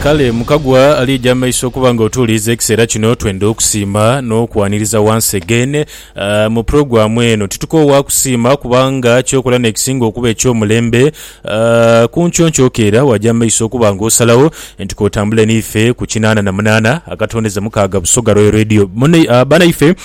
Kale Mukagwa aliija amaiso okuba nga otuuliiza ekiseera kino, twenda okusiima n'okwaniriza once again mu puroguramu eno. Titukoowa kusiima kubanga ky'okola n'ekisinga okuba eky'omulembe. Ku nkyo nkyokeera waja amaiso okuba nga osalagho nti k'otambule n'ife ku kinaana na munaana akatondeza mukaaga Busoga Royal Radio. Banaife.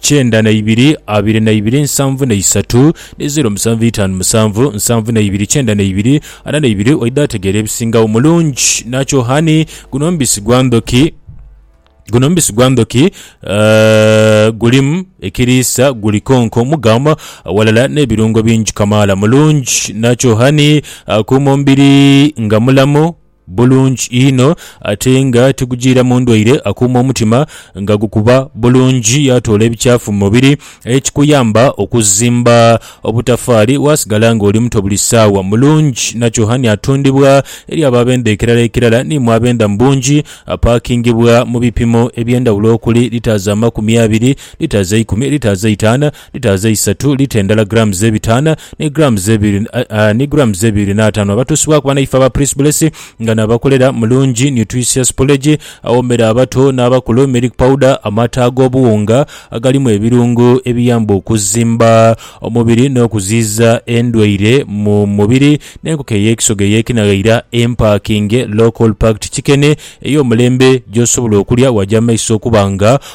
kyenda na ibiri abiri na ibiri nsanvu na isatu ni zeero musanvu itaanu musanvu nsanvu na ibiri kyenda na ibiri ana na ibiri oidha ategeera ebisingagho mulungi nakyo honey guno mubisi gwa ndhoki Guno mubisi gwa ndhoki gulimu ekiriisa guli konko mugam ghalala n'ebirungo bingi kamaala mulungi nakyo honey akuuma omubiri nga mulamu. bulungi inho ate nga tigujiiramu ndwaire, akuuma omutima nga gukuba bulungi yaatoola ebikyafu mu mubiri ekikuyamba okuzimba obutafaali waasigala ng'oli muto buli saawa. Mulungi Nachohani atundibwa eri abo abenda ekirala ekirala ni mwe abenda mu bungi. Apaakingibwa mu bipimo eby'endhawulo okuli, litres amakumi abiri, litres eikumi, litres eitaano, Litaazi eisatu, lita endala grams ebitaana, ni grams ebiri, aa, ni grams ebiri n'ataanu, abatuusibwaku banaife aba Pris-Bless, nga nabakolera mulungi, nutritious porridge, awoomera abato n'abakulu, milk powder, amata ag'obuwunga agalimu ebirungo ebiyamba okuzimba omubiri n'okuziyiza endwaire mu mubiri, n'enkoko ey'ekisoga ey'ekinaghaira empakinge, local-packed chicken, ey'omulembe, gy'osobola okulya waja mu maiso okuba nga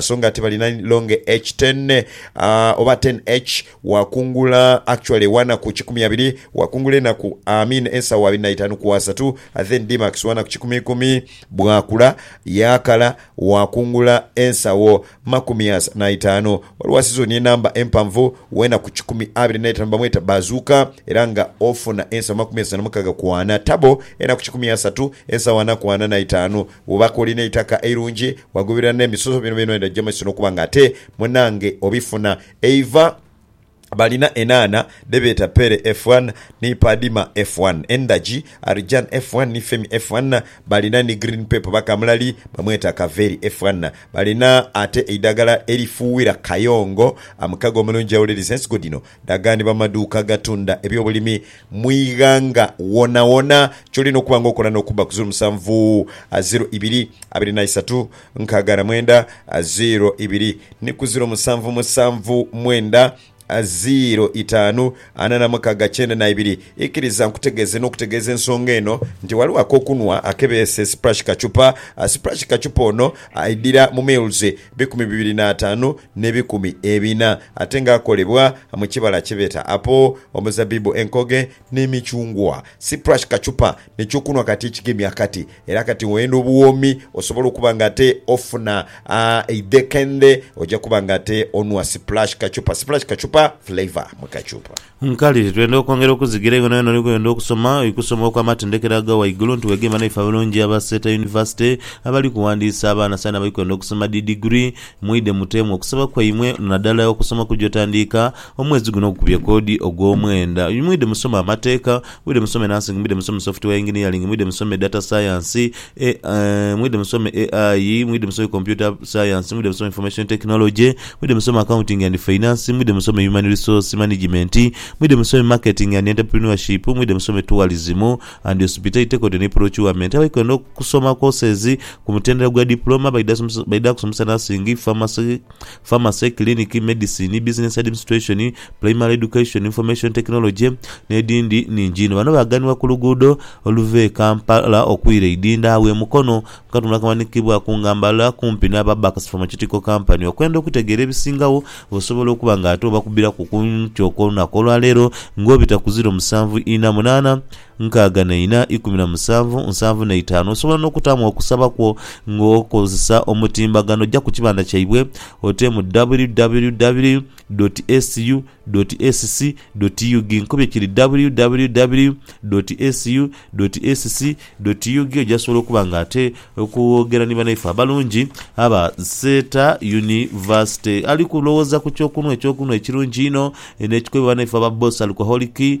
So nga tibali na long H ten oba ten H wakungula actually wanaku kikumi abiri wakungula enaku I mean ensawa abiri na itanu ku asatu then D max wanaku kikumi ikumi bwakula yakala wakungula ensawo makumi as na itanu. Waliwo sizoni enamba empanvu wenaku kikumi abiri na itanu bamweta Bazooka era nga ofuna ensawo makumi asatu na mukaga ku ana tabo enaku kikumi asatu ensawo ana ku ana na itanu Wobaako olina eitaka eirungi, wagoberera n'emisoso bino byona endagirwa mwesi n'okuba nga ate munange obifuna. Eiva balina enhaana dhe beeta Pere F1 ni Padima F1, endagi, Arjan F1 ni Femi F1, balina ni Green Pepper oba kamulali bamweta Kaveri F1. Balina ate eidhagala erifuuwira kayongo, mukago omulungi awuliriza ensigo dhino Dagani bamaduuka agatunda ebyobulimi mu ighanga wonawona kyolina okuba nga okola n'okubba ku ziro musanvu a ziro ibiri abiri na isatu nkaaga na mwenda a ziro ibiri ni ku ziro musanvu musanvu mwenda a ziro itaanu ana na mukaaga kyenda na ibiri. Ikiriza nkutegeeze n'okutegeeza ensonga eno nti ghaligho ak'okunhwa ake beese Splash Kachupa. Splash Kachupa ono aidhira mu meals bikumi bibiri n'ataanu n'ebikumi ebina, ate ng'akolebwa mu kibala kye beeta apo, omuzabbibu, enkoge, n'emicungwa. Cyprush kachupa ne kyokunhwa kati ekigemye akati, era kati ng'oyenda obuwoomi osobole okuba ng'ate ofuna eidhekendhe, oja kuba ng'ate onhwa cyprush kachupa. Cyprush kachupa, flavour mu kachupa. Nkali, twenda okwongera okuzigira eyo yonayona oli kwenda okusoma oikusoma okw'amatendekero aga waigulu nti wegemba naife abalungi aba Seeta University abali kuwandiisa abaana saino abali kwenda okusoma dhi digiri, mwidhe muteemu okusaba kwaimwe nadala okusoma okugya otandiika omwezi guno ogukubye koodi ogw'omwenda. Mwidhe musome amateeka, mwidhe musome nursing, mwidhe musome software engineering, mwidhe musome data science E, A, Mwidhe musome AI, mwidhe musome Computer Science, mwidhe musome Information Technology, mwidhe musome Accounting and Finance, mwidhe musome Human Resource Management, mwidhe musome Marketing and Entrepreneurship, mwidhe musome Tourism and Hospitality Technology ni Procurement. Abaikwenda okusoma courses ku mutendera gwa Diploma baidha kusomesa Nursing, Pharmacy, Pharmacy, Clinic, Medicine, Business Administration, Primary Education, Information Technology n'edhindi nhingi inho. Bano baaganibwa ku luguudo oluva e Kampala okwira e Idinda agho e Mukono mu katundu akamanhikibwaku nga Mbala kumpi n'aba Bax Pharmaceutical Company okwenda okutegeera ebisingagho osobola okuba nga ate obakubiraku ku nkyo kw'olunaku olwaleero ng'obita ku ziro musanvu ina munaana nkaaga na ina, ikumi na musanvu, nsanvu na itaanu. Osobola n'okutaamu okusaba kwo ng'okozesa omutimbagano. Oja ku kibanda kyaibwe oteemu www dot su dot sc dot ug. Nkubye kiri www dot su dot sc dot ug. Oja sobola okuba nga ate okwogera ni banaife abalungi aba Seeta Yunivasite. Ali kulowooza ku kyokunhwa, ekyokunhwa ekirungi einho n'ekikubibwa banaife aba Boss Alcoholic.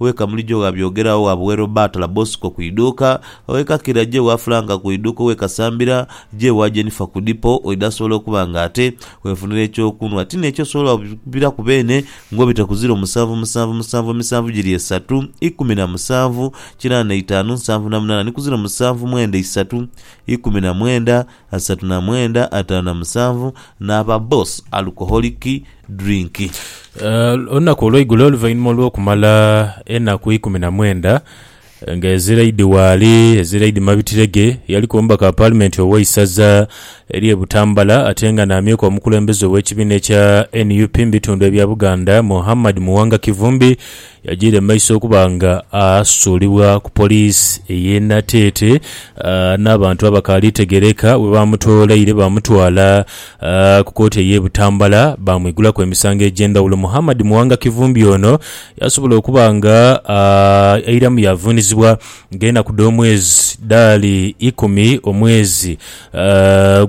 Owe Kamulija ogha Byogera, owe Abuwe Roberta la Bosco ku iduuka, owe Kakira je wa Frank ku iduuka, owe Kasambira je wa Jennifer ku dipo, oidha asobola okuba nga ate wefunira eky'okunhwa. Ti n'ekyo osobola okubiraku beene ng'obita ku ziro musanvu musanvu musanvu emisanvu giri esatu, ikumi na musanvu, kinaana na itaanu, nsanvu na munaana ni ku ziro musanvu mwenda isatu, ikumi na mwenda, asatu na mwenda, ataanu na musanvu naaba boss alcoholic drink. Olunaku olweigulo oluvainhuma olwokumala enaku ikumi na mwenda nga Eziraidi waali, Eziraidi Mabitirege yaliku omubaka wa paalimenti oweisaza erye Butambala atenga n'amyuka omukulembeze owekibina ekya nup mubitundu ebya Buganda Muhammad Muwanga Kivumbi Yajiire mu maiso okuba nga asuulibwa ku poliisi ey'e Nateete n'abantu abakaali tegeereka bwe baamutoolaire baamutwala ku kooti ey'e Butambala baamwigulaku emisango egy'endhawulo. Muhammad Muwanga Kivumbi ono yaasobola okuba nga airamu yaavuunizibwa ng'enaku dh'omwezi dhaali ikumi omwezi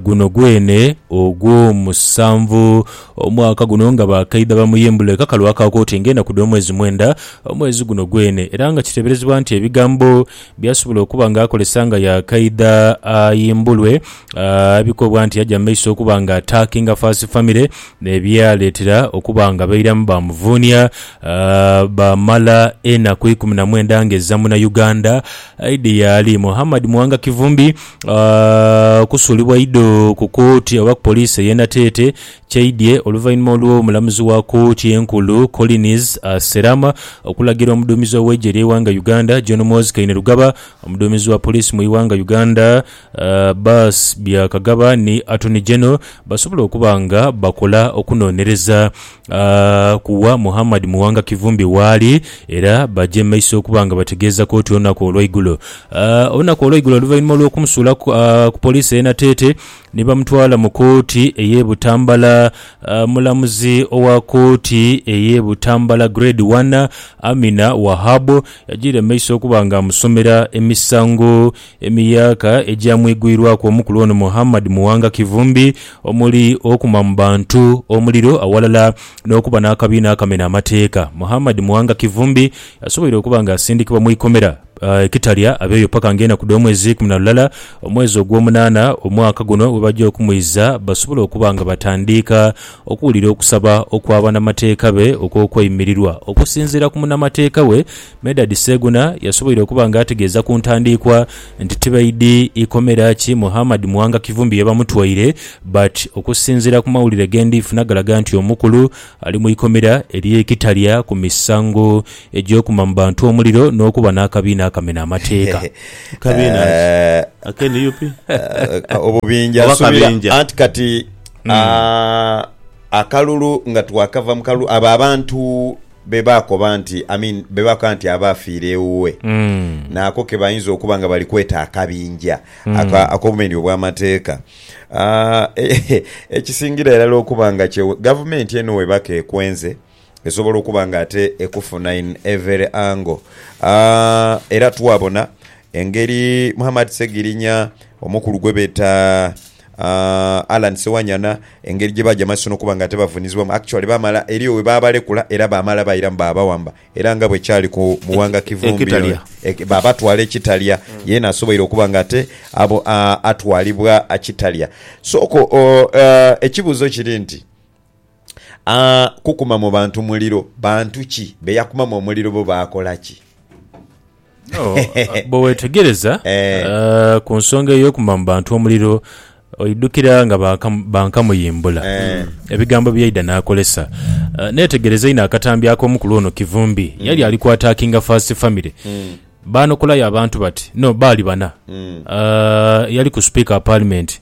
guno gwene ogwomusanvu Omwaka guno nga bakaidha bamuyimbula ekakalu aka kooti ng'enaku dh'omwezi mwenda omwezi guno gwene era nga kiteeberezebwa nti ebigambo by'asobola okuba nga akozesa nga yaakaidha ayimbulwe bikobwa nti yaja mu maiso okuba nga ataakinga Faasi famire ebyaleetera okuba nga bairamu baamuvuunia baamala enaku ikumi na mwenda ng'ezza Munauganda aidhi yaali Muhammad Muwanga Kivumbi kusuulibwa idho ku kooti oba ku poliisi ey'e Nateete kyaidhie oluvainhuma olw'omulamuzi wa kooti enkulu Collins Serama okulagira omuduumizi ow'eigye ly'eighanga Uganda John Muhoozi Kainerugaba, omuduumizi wa poliisi mu ighanga Uganda Baas Byakagaba ni Attorney General basobole okuba nga bakola okunonereza. ku wa Muhammad Muwanga Kivumbi waali era baja e maiso okuba nga bategeeza kooti olunaku olweigulo olunaku olweigulo oluvainhuma olw'okumusuula ku ku poliisi ey'e Nateete ni bamutwala mu kooti ey'e Butambala. Omulamuzi owa kooti ey'e Butambala Grade One, Amina Wahab yajiire mu maiso okuba nga amusomera emisango Emiyaaka egyamwigwirwaku omukulu ono Muhammad Muwanga Kivumbi omuli okuma mu bantu omuliro awalala n'okuba n'akabiina akamena amateeka, Muhammad Muwanga Kivumbi asoboire okuba nga asindikibwa mu ikomera e Kitalya abeeyo paka nga enaku dh'omwezi ikumi na lulala omwezi ogw'omunaana omwaka guno bwebagya okumwiza basobole okuba nga batandiika okuwulira okusaba okwa banamateeka be okw'okweyimirirwa. Okusinziira ku munamateeka we Medard Sseguna yasoboire okuba nga ategeeza ku ntandiikwa nti tibaidhi ikomera ki Muhammad Muwanga Kivumbi ye bamutwaire but okusinziira ku mawulire ge ndhi funa galaga nti omukulu ali mu ikomera erye Kitalya ku misango egy'okuma mu bantu omuliro n'okuba n'akabiina akamena amateeka. Kabiina ki? Ake nup? Obubinja Oba nsubira kabinja. anti kati ah, akalulu nga twakava mu kalulu abo abantu Be baakoba nti, I mean, be baakoba nti aba afiire ewuwe naako ke bayinza okuba nga bali kweta akabinja aka, ak'obumenyi obw'amateeka. Ah, ekisingira irala okuba nga kye Gavumenti eno weba k'ekwenze, esobola okuba nga ate ekufuna in every angle. Ah, era twabona engeri Muhammad Ssegirinya, omukulu gwe beta Allan Sewanyana, Engeri gye baaja mu maiso n'okuba nga tebavunizibwamu, actually baamala eriyo we baabalekula era baamala bairamu baabawamba era nga bwe kyali ku Muwanga Kivumbi ono baabatwala e Kitalya yeena asoboire okuba nga ate atwalibwa Kitalya. Sooka ekibuuzo kiri nti Aa, kukuma mu bantu muliro. Bantu ki be yakumamu omuliro, bo baakola ki? No, bwe weetegereza Eh. eh, ku nsonga ey'okuma mu bantu omuliro, oidhukira nga baaka- bankamuyimbula Eh. ebigambo bye yaidha n'akozesa. Eh, Neetegereza inho akatambi ak'omukulu ono Kivumbi ye yali ali kwataakinga First Family. Hmm. Baanokolayo abantu bati, no, baali bana. Hmm. Eh, eyaliku Sipiika wa Paalimenti,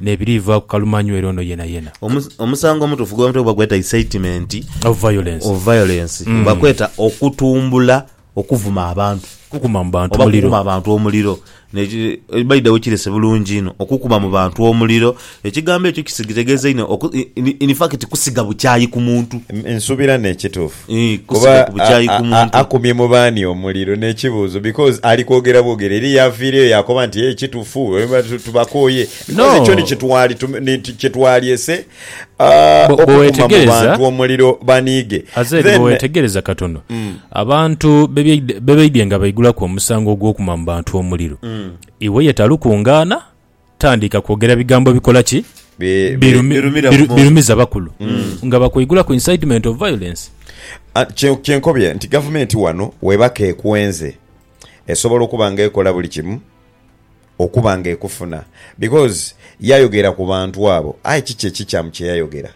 n'ebiriivaaku kalumanywere ono yenayena. Omusango omutuufu gwe batera okuba gweeta incitement of violence oba kweeta okutumbula okuvuma abantu oba okukuma abantu omuliro. By the way kirese bulungi inho okukuma mu bantu omuliro, ekigambo ekyo kitegeeza inho in fact kusiga bukyayi ku muntu. Nsuubira n'ekituufu. Ii, Kuba Kusiga ku bukyayi ku a, a, muntu. akumye mu baani omuliro? N'ekibuuzo, because ali kwogera bwogere. Eliya aviireyo yaakoba nti, Ee, kitufu, eba tu, tubakooye. Because No. ekyo ni kye twali tume, ni ti- kye twalyese, a, Bwe- bwe okukuma mu weetegereza- bantu omuliro baniige. Azaire Then, bwewetegereza katono abantu bebyeide- bebaidye nga baigulaku omusango ogwokuma mu bantu omuliro iwe ye talukungaana Tandika kwogera bigambo bikola ki? Birumiza bakulu nga bakweigula ku incitement of violence. Kye nkobye nti gavumenti wano weba kekwenze esobola okuba nga ekola buli kimu okuba nga ekufuna because yayogera ku bantu abo aye kiki ekikyamu kye yayogera?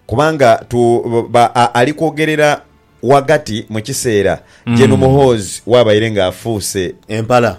Kubanga tu ba a ali kwogerera ghagati mu kiseera Gen Muhoozi w'abaire nga afuuse empala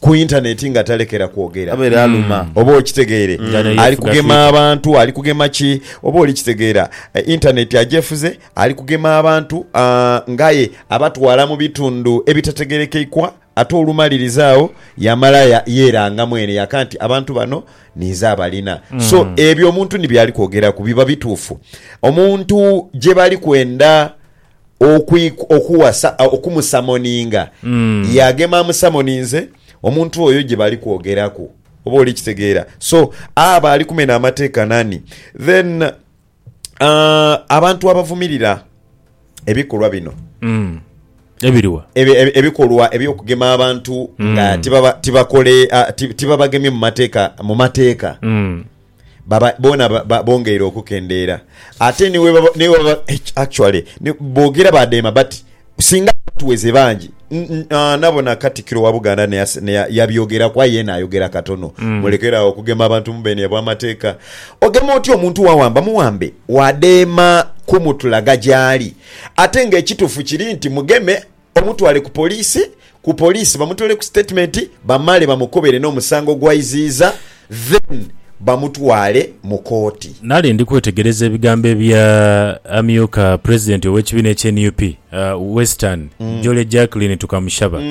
ku Internet nga talekera kwogera. Abaire aluma. Oba okitegeire? Ali kugema abantu, ali kugema ki? Oba oli kitegeera? Internet agyefuze, ali kugema abantu, aa, ng'aye abatwala mu bitundhu ebitategerekeikwa. Ate olumaliriza agho yamala yeeranga mwene yaka nti, Abantu bano ninze abalina. So, ebyo omuntu ni by'ali kwogeraku biba bituufu. Omuntu gye bali kwenda okuwasa, okumusamoninga, yaagema amusamoninze, omuntu oyo gye bali kwogeraku. Oba oli kitegeera? So, aba ali kumena amateeka nani? Then, abantu abavumirira ebikolwa bino Mm. Ebiriwa? ebe- ebe- ebikolwa eby'okugema abantu nga tibaba- tibakole ah, ti- tibabagemye mu mateeka mu mateeka Mm. baba bona ba- ba- bongeire okukendeera ate niwebaba- niwebaba- actually ni- boogera badeema but Singa abatuweze bangi nabona Katikiro wa Buganda yabyogeraku aye yena ayogera katono. Mm. Mulekere awo okugema abantu mubeni ebwa mateeka. Ogema otya omuntu wawamba muwambe wadeema kumutulaga gyali ate nga ekitufu kiri nti mugeme omutwale ku police ku poliisi bamutoole ku sitetimenti bamale bamukobere n'omusango gw'aiziiza then bamutwale mu kooti. Nali ndi kwetegereza ebigambo ebya amyuka pulezidenti ow'ekibiina ekya nup Western, Jole Jacqueline Tukamushaba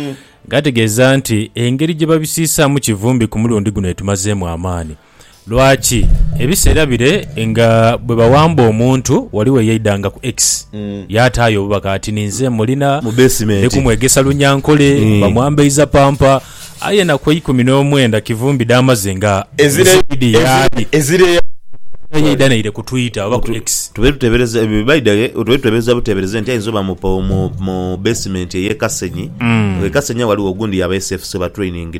ng'ategeeza nti engeri gye babisiisaamu Kivumbi ku mulundi guno etumazeemu amaani. Lwaki? Ebiseera bire nga bwe bawamba omuntu wali weyaidanga ku X yaataayo obubaka ati ninze mulina ndi kumwegesa Runyankole, bamwambaiza pampa. Aye na ku eikumi n'omwenda Kivumbi dh'amaze nga Musaidhi y'ali, era yaidha naire ku Twitter oba ku X. Tube tuteebereza buteebereze nti aidha oba mu beesimenti ey'e Kasenyi. Kasenyi agho ghaligho ogundi yaba SFC oba Training.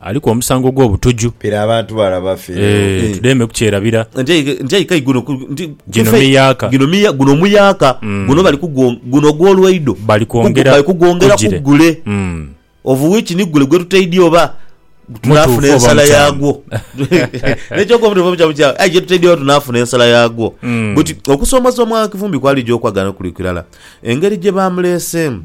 Aliku omusango ogw'obutuju. Pira abantu bala bafe. Eeh tudeme kukyerabira. Nti aye k'aye guno nti. Gino miyaaka. Gino miya guno muyaaka. Guno bali kugwo guno ogw'olwaido. Bali kwongera kugule. Bali kugwongera kugule. Of which ni gule gwetutaidya oba tunaafuna ensala yaagwo. N'ekyokwoba nti ova mu kyamu kyaagho aye gyetutaidya oba tunaafuna ensala yaagwo. Buti okusoomoza Omwaagha Kivumbi kwali gy'okwagala n'okuliku irala engeri gye baamuleeseemu.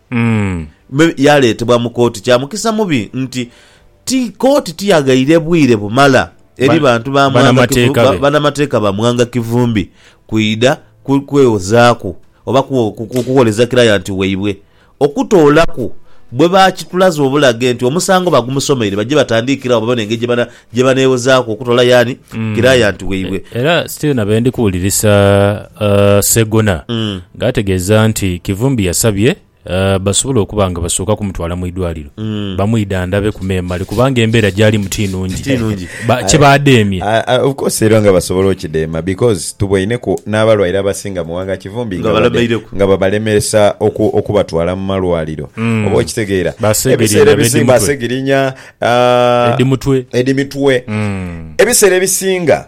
me yaaleetebwa mu kooti. Kya mukisa mubi nti ti kooti tiyaghaire bwire bumala eri bantu ba banamateeka ba Mwanga Kivumbi kwidha kwewozaaku oba kugholeza kilayanti waibwe okutoolaku bwe baakitulaze obulage nti omusango bagumusomeire baje batandiikire agho babone engeri gye baneewozaaku okutoola Yaani kirayanti waibwe. Era still na bendi kuwulirisa uh, Ssegona nga ategeeza nti Kivumbi yasabye uh, basobole okuba nga basooka kumutwala mu idwaliro bamwidhandabe ku memale kubanga embeera gyalimu ti nungi Ti nungi. Ba- kye badeemye Ah, ah, of course era nga basobola okideema because tubwaineku n'abalwaire abasinga mu wanga Kivumbi Nga babadde- balemeireku. nga babalemesa oku, okubatwala mu malwaliro oba okitegeera Basegirinya ebiseera ebisinga b'edimutwe. basegirinya edimutwe edhimitwe mm. ebiseera ebisinga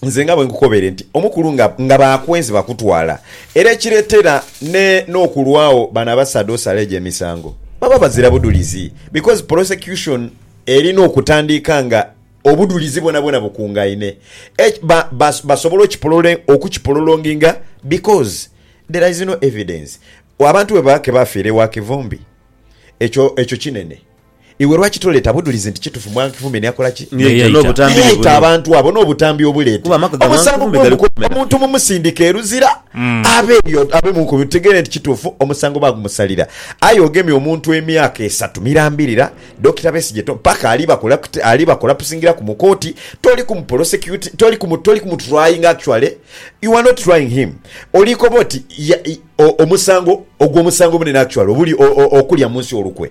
nze nga bwenkukobere nti omukulu nga, nga bakwenzi bakutwala era ekiretera ne nokulwawo bano abasaadha osala egyo emisango baba bazira budulizi because prosecution erina okutandiika nga obudulizi bwona bwona bukungaine Eki- ba- bas- basobola okipolole- okukipololonginga because there is no evidence abantu bwebaba kebafiira ewa kivumbi ekyo ekyo kinene Iwe lwaki toleeta budhulizi nti kitufu Mwami Kivumbi niyakola ki? Niyaita abantu abo n'obutambi obuleete omusango gw'omuko gw'omuntu mumusindike e Luzira abe eyo abe mu nkubi tutegeere nti kitufu omusango baagumusalira. Aye ogemye omuntu emyaka esatu mirambirira Dokita Besigye to paka ali bakolapti ali bakolapusingiraku mu kooti toli ku muprosecuti toli ku mu toli ku mutrayinga actually you are not trying him oli koba oti ya o omusango ogwo omusango omunene actually obuli o o okulya munsi olukwe.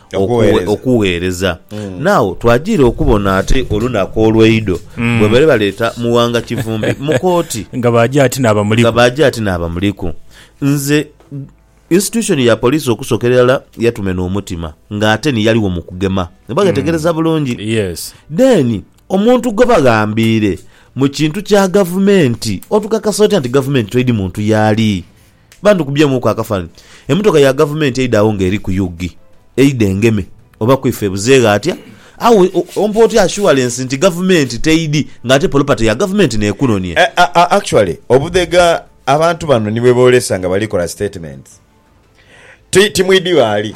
Okugheereza. okugheereza nao twajiire okubona ate olunaku olweidho bwebaire baleeta Muwanga Kivumbi mu kooti Nga baagya ati naaba muliku. nga baagya ati naaba muliku nze institution ya police okusookera irala yatumena omutima nga ate ni yaligho mu kugema oba ghetegereza bulungi Yes. then omuntu gwebaghambiire mu kintu kya gavumenti otukakasa otya nti gavumenti toidi muntu yaali Bantu kubyemuku akafanhi emotoka ya gavumenti eidha agho nga eriku ug eidha engeme oba kwifa ebuzeghe atya agho ompa otya assurance nti gavumenti teidhi nga ate polopate ya gavumenti nekunonhya. Actually obudhega abantu bano nibwebolesa nga balikola statements ti timwidhi ghali.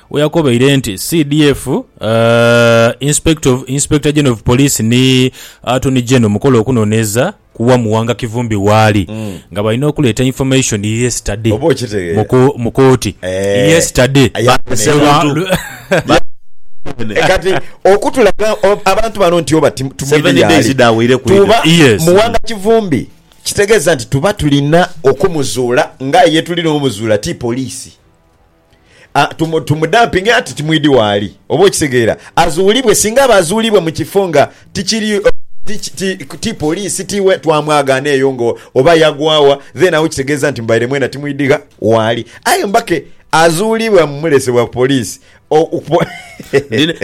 We yakobeire nti CDF, Inspector General of Police ni Attorney General mukola okunoneeza ku wa Muwanga Kivumbi waali nga balina okuleeta information yesterday mu kooti. Yesterday. Kati okutulaga abantu bano nti oba tumwine yaali tuba Muwanga Kivumbi kitegeeza nti tuba tulina okumuzuula nga aye yetulina omuzuula ti poliisi. tumudampinge ati timwidhi waali. Oba okitegeera? Azuulibwe. Singa aba azuulibwa mu kifo nga tikiri, ti poliisi, ti we, twamwagaana eyo nga oba yagwa wa, then agho kitegeeza nti mubaire mwena timwidhi gha waali. Aye mbake azuulibwa mumulesebwa ku poliisi, o.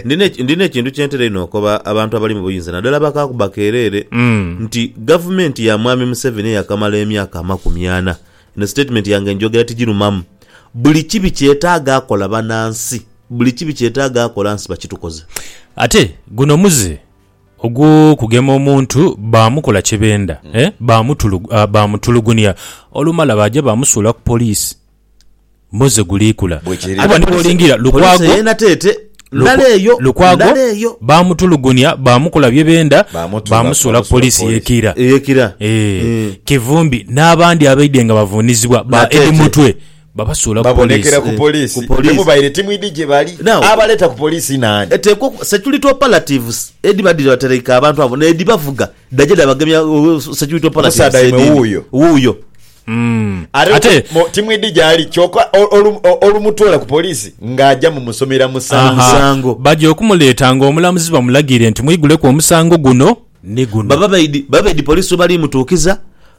Ndina ekintu kye ntera einho okoba abantu abali mu buyinza naddala abakaakuba keereere nti gavumenti ya Mwami Museveni eyakamala emyaka amakumi ana Eno statement yange njogera tijirumamu. Buli kibi kyetaaga akola bana nsi. Buli kibi kyetaaga akola nsi bakitukoze. Ate guno muze ogwokugema omuntu bamukola kyebenda eh bamutulugunia olumala baja bamusuula ku police. Moze guliikula kuba ni bw'olingira Lukwago, Lukwago baamutulugunya, baamukola bye benda, baamusuula ku poliisi y'e Kiira. Kivumbi n'abandi abaidhye nga bavuunizibwa ba Eddie Mutwe babasuula ku poliisi. Babonekera ku poliisi temubaire timwidhi gye bali. Abaleeta ku poliisi naani? Eteekwa security operatives edhibadhire batereike abantu abo n'edhibavuga dhaja dhabagemya security operatives edhindhi. Omusaadha waimwe wuuyo. Mm. Ate, Ate mo- timwidhi gyali kyoka ol- olu- o- olumutwala ku poliisi ng'aja mu musomera musango. Aha. Musango. Baja okumuleeta ng'omulamuzi bamulagiire nti mwiguleku omusango guno ni guno. Baba baidhi baba baidhi poliisi webali mutuukiza,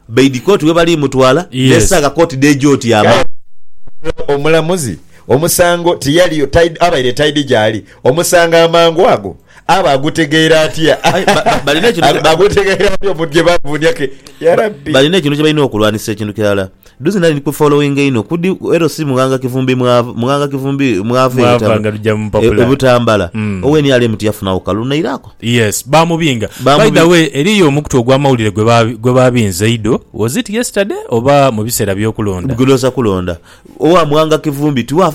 baidhi kooti webali mutwala, Yes. n'esaaga kooti dh'eja otyama. Omulamuzi omusango tiyaliyo, taidhi- abaire taidhi gyali omusango amangu ago. Abo agutegeera atya? Agutegeera atya omuntu gye bavuunia ke? Ya Rabbi! Balina ekintu kye balina okulwanisa ekintu kirala. Duzi nali ndi ku followinga inho kudi ero si Mughanga Kivumbi mwava, Mughanga Kivumbi mwava e Mwava nga lugya mu e mpapula. Butambala. Mm. Owe nrm tiyafunawo kalulu nairaku. Yes, baamubinga. By Baamubi- the way, eriyo omukutu ogw'amawulire gwe ba- gwe baabinze eido, was it yesterday oba mu biseera by'okulonda? Gulooza kulonda. Owa Mughanga Kivumbi tiwa.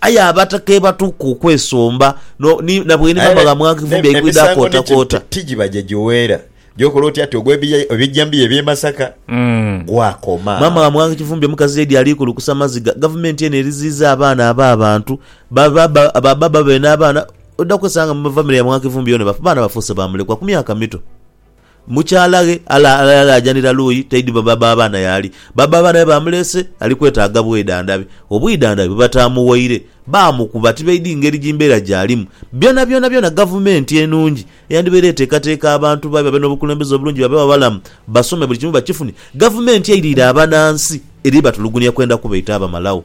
Aye abatakebatuuka okwesomba na bweniba nga bamwaka ifumbi eikwidha kootakoota. Ti gibaja giweera. Gyokola oti ati ogwa ebijambiya eby'e Masaka gwakoma. Maama wa Mwaka Kifumbi omukazi Lady Aliikulukusa Maziga, Gavumenti eno eriziiza abaana ab'abantu. Babbaabwe n'abaana oidha kwesanga mu famire ya Mwaka Kifumbi yoona abaana bafuuse ba mulekwa ku myaka mito. Mukyalaghe alaajanira luuyi taidhi baba b'abaana y'ali. Baba b'abaana be baamuleese ali kwetaaga bwedandhabi. Obwidandhabi bwe bataamuwaire, baamukuba tibaidhi ngeri ji mbeera gy'alimu. Byonabyona gavumenti enungi eyandibaire eteekateeka abantu bayo babe n'obukulembeze obulungi babe abalamu, basome buli kimu bakifune, gavumenti eiriire abanansi eri batulugunia kwenda kubaita abamalagho.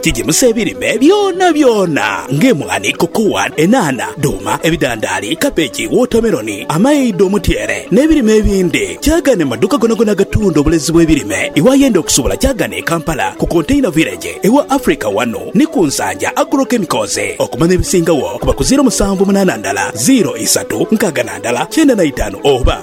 Kigimusa ebirime byonabyona ng'emwaani, kokowa, enhaanha, dhuuma, ebidhandaali, kabeji, wootameroni, amaidho, omutyeere n'ebirime ebindi. Kyaagana mu madhuuka gonagona agatunda obulezi bw'ebirime iwe ayenda okusubula kyaagana e Kampala ku Container Village ewa Africa wano ni ku Nsanja Agro Chemicals. Okumanya ebisingagho kuba ku ziiro musanvu munaana ndala ziiro isatu nkaaga na ndala kyenda na itaanu oba.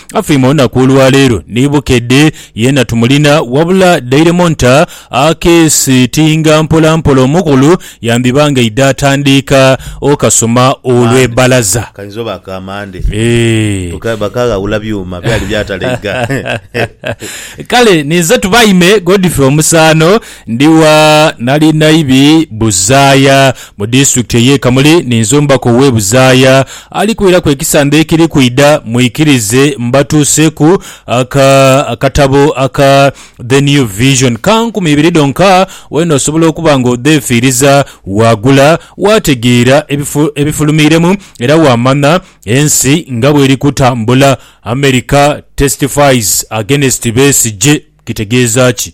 Afeime olunaku olwaleero ni Bukedde yeena tumulina wabula dhairemu nta akeesitinga mpolampola omukulu yandhiba nga aidha atandiika okasoma olw'e balaza. Kainza oba aka Mande. Eeh. Bakaghawula byuma byali byatalaiga. Kale ninze Tubaime Godfrey Omusaano Ndigha nali Naibi Buzaaya mu Disitulikiti ey'e Kamuli ni Nzumbaku ow'e Buzaaya ali kwiraku ekisande ekiri kwidha, mwikirize mbatuuseku aka akatabo aka The New Vision ka nkumi ibiri dhonka wena osobola okuba nga odheefiiriza, waagula, waategeera ebifu ebifulumiiremu era waamanha ensi nga bweri kutambula. America Testifies Against Besigye kitegeeza ki?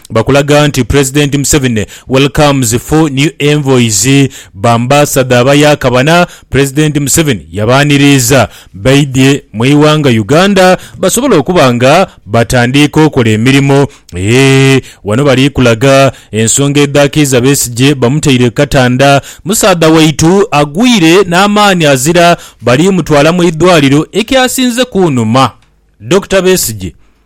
Bakulaga nti Pulezidenti Museveni welcomes full new envoys Bambasadha abayakabana Pulezidenti Museveni yabaaniriiza baidhye mu ighanga Uganda basobole okuba nga batandiika okola emirimo eeh Wano bali kulaga ensonga edhaakiiza Besigye bamutaire ku katanda Musaadha waitu agwire n'amaani azira Bali mutwala mu idhwaliro Ekyasinze kunuma Dokita Besigye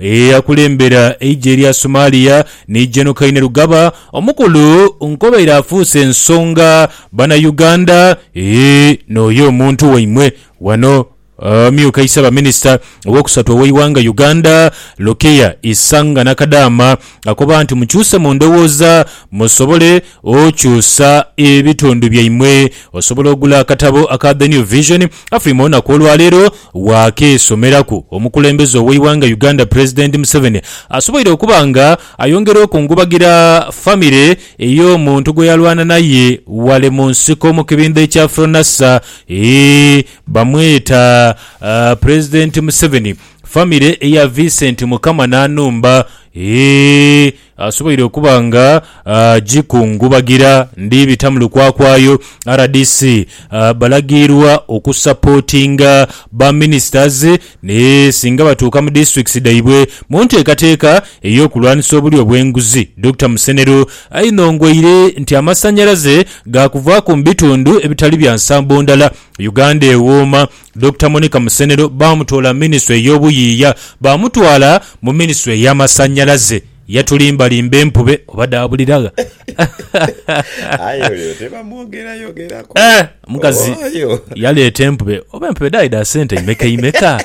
Eyakulembera eigye lya Somalia ni Gen Kainerugaba omukulu nkobaire afuuse ensonga bana Uganda eeh nooyo omuntu waimwe wano amyuka isabaminisita owokusatu oweighanga Uganda Lukia Isanga Nakadaama Akoba nti, Mukyuse mu ndowooza musobole okyusa ebitundu byaimwe. Osobola ogula akatabo aka The New Vision Afrima olunaku olwaleero waakeesomeraku. Omukulembeze ow'eighanga Uganda Pulezidenti Museveni asoboire okuba nga ayongera okungubagira famire ey'omuntu gweyalwana naye wale mu nsiko mu kibindho ekya Fronasa. Eeh bamweta Pulezidenti Museveni. Family eya Vincent mukama nanumba eeh asoboire okuba nga ajikungubagira ndi bita mulukwakwayo rdc balagiirwa oku supportinga ba ministers ni singa batuuka mu districts dhaibwe munteekateeka eyokulwanisa obulyo obwenguzi Dokita Musenero ainongoire nti amasanyalaze gakuvaaku mubitundu ebitali bya nsambo ndala Uganda ewooma Dokita Monica Musenero baamutoola mu minisitule y'obuyiiya baamutwala mu minisitule y'amasannyalaze. Yatulimbalimba empube oba dhaabulira gha? Aye oyo tebamwogerayogerako. Eh, omukazi Oyo. yaleeta empube oba empube dhaali dha sente imekeimeka.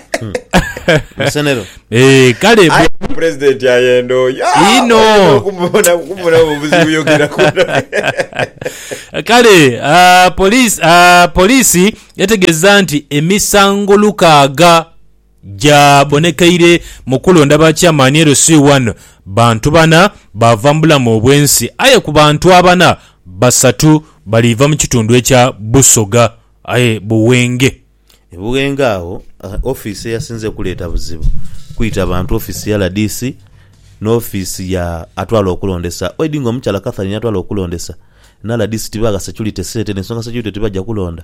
Musenero. Eh, kale Aye bwe- pulezidenti ayenda oyo. Ah, Ino. oyinza okumubona- okumubonamu obuzibu yogerako. Kale ah, poliisi ah, poliisi Yategeeza nti emisango lukaaga gyabonekeire mu kulonda ba Chairman LC wano bantu bana baava mu bulamu obwensi aye ku bantu abana, basatu baliiva mu kitundu ekya Busoga aye Buwenge. E Buwenge agho ofiisi eyasinze okuleeta buzibu kwita bantu ofiisi ya rdc n'ofiisi ya atwala okulondesa Oidinga omukyala Catherine yatwala okulondesa Na rdc tibagha security sente nensonga security tibaja kulonda.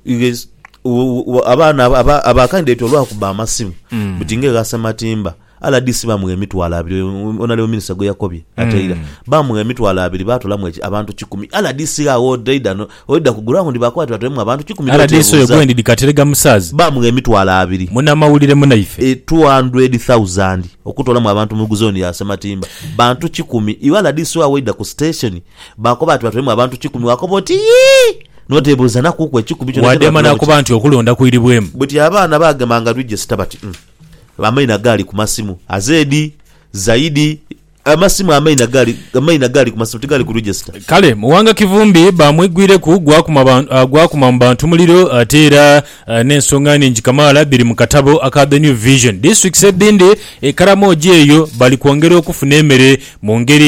You guys, u- u- u- abaana aba- aba- aba candidate olwakuba amasimu buti nga egha sematimba rdc bamugha emitwalo abiri um, honorable minister gweyakobye ateira bamugha emitwalo abiri batolamu eki- abantu kikumi rdc agho odaida no- oida ku ground bakuba ati batolemu abantu kikumi rdc oyo n'otebuuza. gwendi dikaterega musaazi bamugha emitwalo abiri munamawulire munaife e 200,000 okutolamu abantu mu zone ya sematimba Bantu kikumi. Iwe rdc wa waidha ku station baakoba nti batwalemu abantu kikumi waakoba oti yii! N'oteebuuzanakuuku ekikumi kyona kye Wadema baatulamu ki? n'akoba nti okulonda kwiribwemu. Buti abaana baagemanga register bati umm amaina gaali ku masimu azeedi, zaidi, amasimu amaina gaali amaina gaali ku masimu tigaali ku register. Kale Muwanga Kivumbi baamwigwireku gwakuma ba gwakuma mu bantu muliro ate era N'ensonga nhingi kamaala dhiri mu katabo aka The New Vision. Disiturikiti edhindi e Karamoja eyo bali kwongera okufuna emere mu ngeri